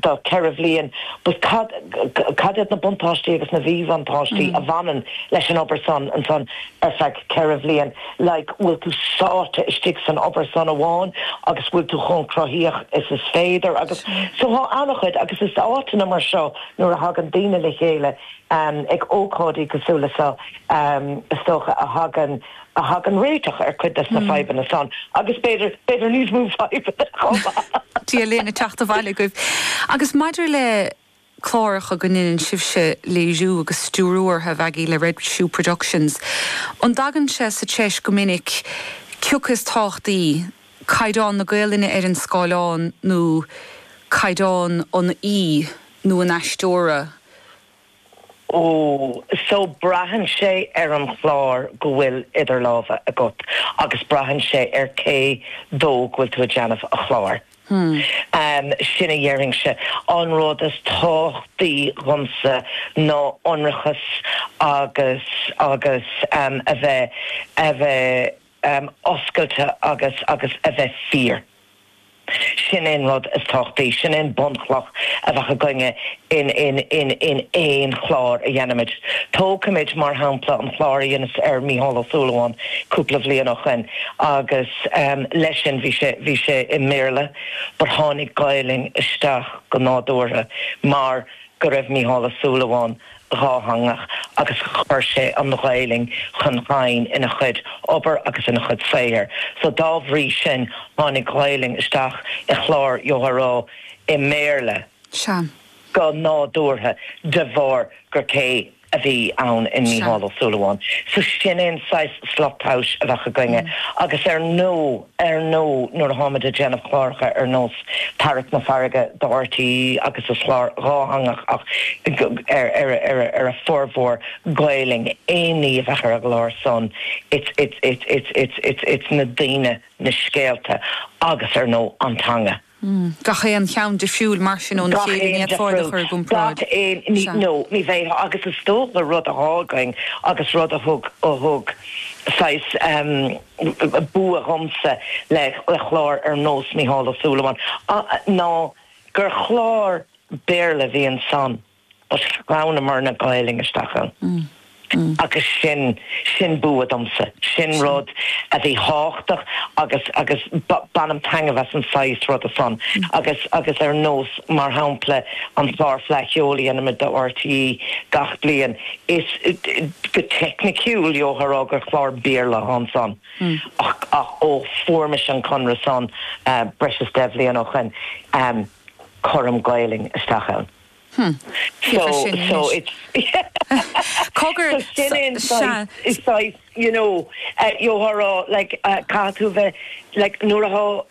do 4 bhliain. Cad iad na buntáistí agus na míbhuntáistí a bhaineann leis an obair san ansan ar feadh 4 bhliain? Like bhfuil tú sáite istigh san obair san amháin agus bhfuil tú chomh cruthaitheach is is féidir agus so tá ana-chuid agus is áiteanna mar seo nuair a thagann daoine le chéile ag ócáidí cosúil le seo is dócha a thagann a thagann réiteach ar chuid des na fadhbanna san agus b'fhéidir, b'fhéidir níos mó fadhbanna chomh maith! Dia linn, ag teacht abhaile agaibh. Agus maidir le cláracha go ndeineann sibhse léiriú agus stiúrú ortha, a Mhaggie, le Red Shoe Productions, an dtagann sé sa treis go minic cioca is tábhachtaí, caighdeán na Gaolainne ar an scáileán nó caighdeán an aoi nó an aisteora? so braitheann sé ar an chlár go bhfuil idir lámha agat agus braitheann sé ar cé dó go bhfuil tú ag déanamh an chláir. Sin a dhéarfainnse. An rud is tábhachtaí dhomsa ná ionracas agus agus a bheith a bheith. oscailte agus agus a bheith fíor. Sin é an rud is tábhachtaí, sin é an bunchloch a bheadh againne in in in in aon chlár a dhéanaimid. Tógfaimid mar shampla an chlár a dheineas ar Mícheál Ó Súilleabháin cúpla bhliain ó shoin agus em leis sin bhí sé bhí sé i mBéarla but tháinig Gaolainn isteach go nádúrtha mar go raibh Mícheál Ó Súilleabháin dhátheangach agus chuir sé an Ghaelainn chun chinn ina chuid obair agus ina chuid saothair so dá bhrí sin tháinig Gaelainn isteach i chlár a bhí i mBéarla go nádúrtha de bharr gur cé a bhí ann i Mícheál Ó Súilleabháin so sin é an saghas slat tomhais a bheadh againne agus ar ndóigh. ar ndóigh nuair a tháimid ag déanamh cláracha ar nós Tarrac na Farraige do RTÉ agus is clár dhátheangach ach ar a formhór Gaolainn é ní a bheadh ar an gclár san it's na daoine, na scéalta agus ar ndóigh an teanga. Gach aon cheann difriúil mar sin ní féidir iad a chur i gcomparáid. No, ní bheidh. Agus is dóigh gur rud a tá againn agus rud a thug, a thug saghas bua dhomsa le clár ar nós Mícheál Ó Súilleabháin, ná gur chlár Béarla a bhí ansan. agus shníomar an Ghaelainn isteach ann agus sin, sin bua domsa, sin rud a bhí thábhachtach agus, agus bainim taitneamh as an saghas ruda san agus, agus ar nós mar shampla an clár Fleadh Cheoil a dhéanaimid do RTÉ gach bliain, is, go teicniciúil gheobhfá a rá gur chlár Béarla thá ansan ach, ach ó fuair mise an conradh san breis is deich bhliain ó shoin, cuirim Gaelainn isteach ann. Thiocfadh sin anois. Cogar, sea.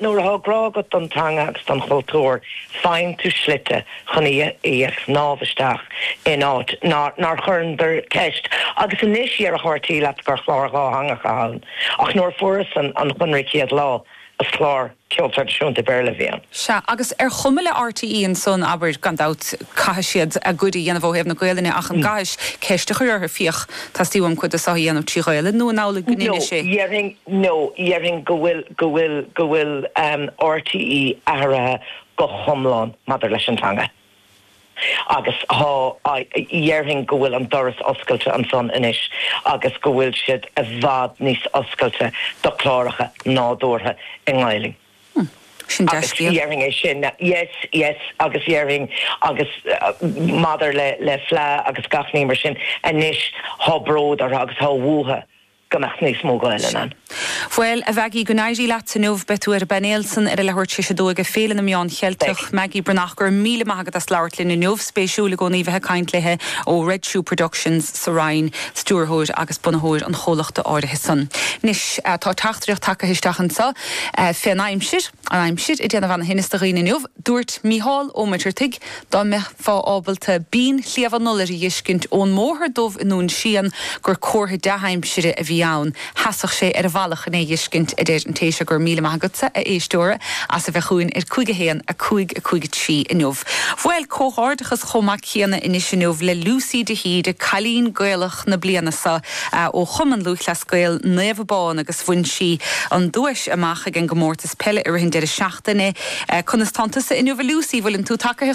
Nuair thá grá agat don teanga agus don chultúr, faigheann tú slite chun í a shníomh isteach in áit nár chuireadar ceist. Agus anois, déarfadh RTÉ leat gur chlár dhátheangach a thá ann. Ach nuair a fuaireas an conradh an chéad lá, Is clár ceol traidisiúnta Béarla a bhí ann. Sea, agus ar chuma le RTÉ ansan, abair, gan dabht, caithfidh siad a gcuid a dhéanamh ó thaobh na Gaolainne ach an gcaithis ceist a chur orthu, féach, teastaíonn uaim cuid de seo a dhéanamh trí Ghaolainn, nó an amhlaidh go ndéanfaidh sé? No, dhéarfainn, no, dhéarfainn go bhfuil, go bhfuil, go bhfuil RTÉ athraithe go hiomlán maidir leis an teanga. Agus thá, dhéarfainn go bhfuil an doras oscailte ansan anois agus go bhfuil siad i bhfad níos oscailte do chláracha nádúrtha i nGaelainn. Hm, sin Agus dea-scéal. dhéarfainn é sin, yes, yes, agus dhéarfainn agus maidir le Fleadh agus gach ní mar sin, anois thá bród orthu agus thá uathu. go mbeadh níos mó Gaolainn ann. Bhuel, a Mheaigí, go n-éirí leat inniu. Beidh tú ar an bpainéal san ar a leathuair tar éis a dó ag Féile na Meán Beidh. Cheilteach. Meaigí Breathnach, go raibh míle maith agat as labhairt linn inniu. Spéisiúil i gcónaí bheith ag caint léithe ó Red Shoe Productions sa Rinn, stiúrthóir agus bunaitheoir an chomhlachta áirithe san. Anois, tá teachtaireacht tagtha isteach anseo fén aimsir, an aimsir ag déanamh ana thinneas do dhaoine inniu. Dúirt Mícheál Ó Muircheartaigh Dá mbeifeá ábalta Binn Shliabh an Iolair a dh'fheiscint ón mBóthar Dubh i nDún Síon gur comhartha dea-aimsire a bhí ann. Sheasadh sé ar a bhealach chun é a dh'fheiscint, a deir an té seo go raibh míle maith agatsa, a éisteora, as a bheith chugainn ar 51 5 5 3 inniu. Bhuel, comhghairdeachas chomh maith céanna anois inniu le Lucy de hÍde, Cailín Gaelach na Bliana sa ó Chumann Lúthchleas Gael Naomh Abán agus bhain sí an duais amach ag an gComórtas Peile i rith an deireadh seachtaine. Conas tánn tusa inniu, a Lucy? Bhfuileann tú tagaithe?